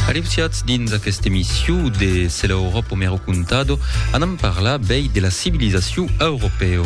Areusiatz dins aquesta emission de Se l'Europe o mero contado, anam parlar bèi de la civilizacion europeo.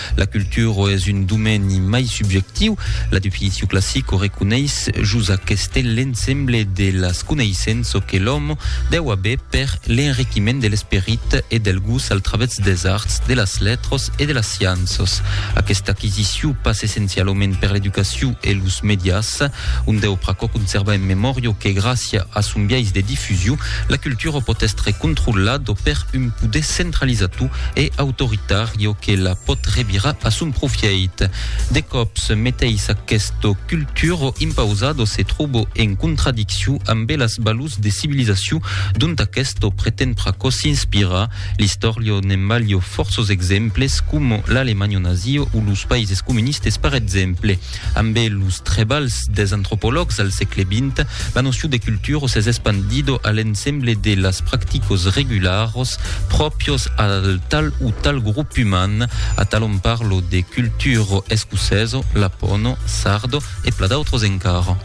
La cultura es un domeni mai subjectiu, la definicion classica o reconeis jos aqueste l'ensemble de las coneissenças que l'òme deu aver per l'enriquiment de l'esperit e del gust al travèrs des arts, de las letras e de las scienças. Aquesta aquisicion passa essencialament per l'educacion e los medias. Un deu pr'aquò conserva en memòrio que gràcia a son biais de difusion, la cultura pòt èstre controlado per un poder centralizator e autoritario que la pòt revirar a son profièit. De còps, meteis aqueste cultura impausado se tròba en contradiccion ambe las balors de civilizacion dont aqueste pretend pr'aquò s'inspirar. L'istòria ne'n balha fòrços exemples, coma l'Alemanha nazia o los païses comunistes per exemple. Ambe los trebalhs des antropològs al sègle vint, la nocion de cultura s'es espandido a l'ensemble de las practicos regularos pròpios al tal o tal grop uman, atalhon parlo de cultura escocèso, lapono, sardo e pla d'autros encara.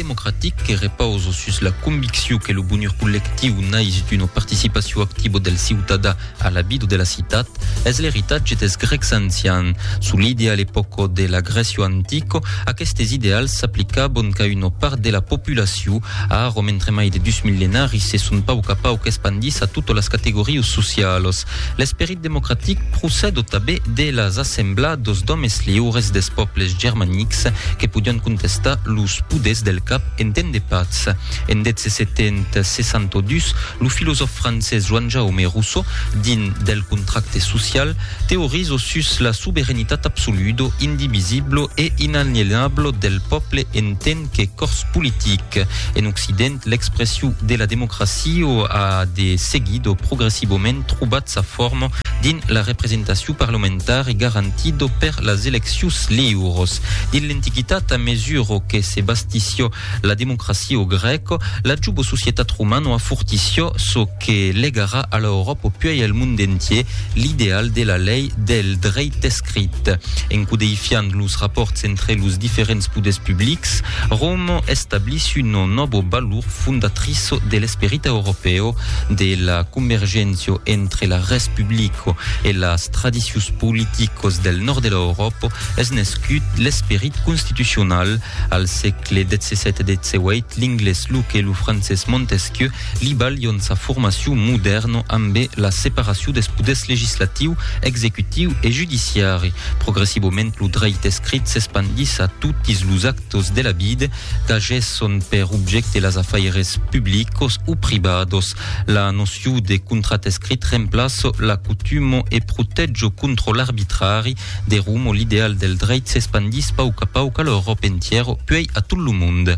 democratic que repausa sus la conviccion que lo bonur collectiu nais d'una participacion activa del ciutadà a la vida de la citat, es l'eritatge dels grècs ancians. Solide a l'epòca de la Grècia antica, aquestes ideals s'aplicavan qu'a una part de la populacion. Ara, mentre mai de dus millenaris se son pauc a pauc espandits a totas las categorias socialas, L'esperit democratic procèd o tabé de las assemblàs dos d'òmes liures des pòbles germanics que podián contestar los poders del cap en temps de patz. En 1762, lo filosòf francés Joan-Jaume Rousseau, dins Del contracte social, teorizo sus la soberanitat absoludo, indivisiblo e inalienablo del pòble en temps que cors politic. En Occident, l'expression de la democracia a de seguido progressivament trobat sa forma dins la representacion parlamentara e garantido per las eleccions liuras. Dins l'Antiquitat, a mesura que se bastissió la democracia grèca, la juba societat romana a fortissió çò que legarà a l'Euròpa puèi al mond entier, l'ideal de la lei del dreit escrit. escrit. En codeifiant los rapòrts entre los diferents poders publics, Roma establís una nòva valor fondatriça de l'esperit europèu de la convergéncia entre la res publica e las tradicions politicas del nòrd de l'Euròpa es nescut l'esperit constitucional. Al sègle XVII-XVIII, l'inglés Locke e lo francés Montesquieu li balhon sa formacion modèrna ambé la separacion des poders legislatiu, executiu e judiciari. Progressivament lo dreit escrit s'espandís a totis los actos de la vida qu'agesson per objècte las afaires publicos o privados. La nocion de contrat escrit remplaça la cotuma e protèja contra l'arbitrari. De Romo l'ideal del dreit s'espandís pauc a pauc a l'Euròpa entièra puèi a tot lo monde.